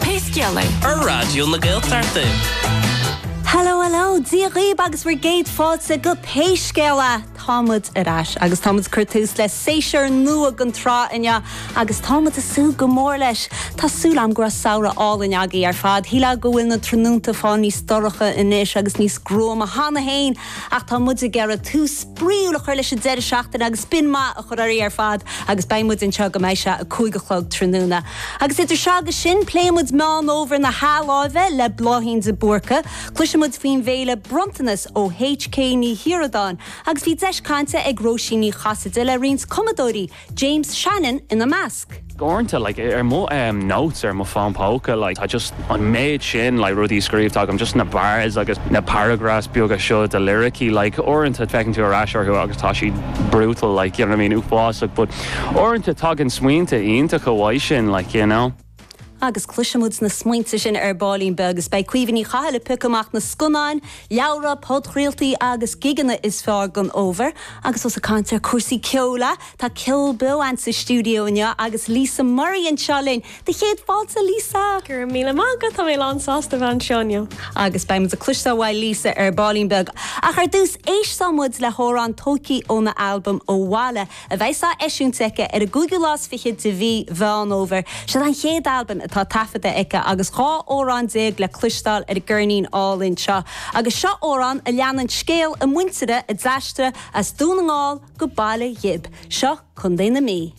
Pé scéal é, ar Raidió na Gaeltachta. Hello hello, Dia dhaoib agus bhur gcéad fáilte go Pé Scéal É! Tá muid ar ais agus tá muid ag cur tús le séasúr nua den tsraith inniu agus tá muid ag súil go mór leis. Tá súil agam go raibh samhradh álainn agaibh ar fad. Shílfeá go bhfuil na tráthnónta ag fáil níos dorcha anois agus níos gruama cheana féin Ach tá muid ag iarraidh tús spraíúil a chur leis an deireadh seachtaine agus spion maith a chur oraibh ar fad agus beidh muid anseo go mbeidh sé a cúig a chlog tráthnóna. Agus idir seo agus sin, pléifidh muid Meán Fhómhair na hathláimhe le Bláithín de Búrca, cloisfidh muid faoin bhféile Bronntanas ó HK Ní Shíoradáin agus bhí deis cainte ag Róisín Ní Chasaide le roinnt cumadóirí James Shannon ina measc. uaireanta like ar mo em notes ar mo fón póca like tá just an méid sin like rudaí scríobhta agam just na bars agus na paragraphs beaga seo de liricí like uaireanta feiceann tú ar ais orthu agus tá siad brutal like you know what I mean uafásach but uaireanta tagann smaointe iontacha uaidh sin like you know. Agus cloisfidh muid na smaointe sin ar baillín beag is beidh Caoimhe Ní Chathail ag piocadh amach na scannáin, leabhra, podchraoltaí agus gigeanna is fearr don fhómhar. Agus ós ag caint ar chúrsaí ceoil, a, tá ceol beo a'ainn sa stiúideo inniu agus Lisa Murray anseo linn! Do chéad fáilte, Lisa! Go raibh míle maith agat, tá mé lánsásta bheith anseo inniu. Agus beidh muid ag cloisteáil uaidh Lisa ar baillín beag, ach ar dtús, éistfidh muid le hamhrán Tóicí óna albam Ó Bhaile a bheas á eisiúint aici ar an gcúigiú lá is fiche de mhí Mheán Fhómhair. Seo an chéad albam atá taifeadta aici agus dhá amhrán déag le cloisteáil ar an gceirnín álainn seo. Agus seo amhrán a leanann scéal a muintire a d'aistrigh as Dún na nGall go Baile Ghib, seo Contae na Mí.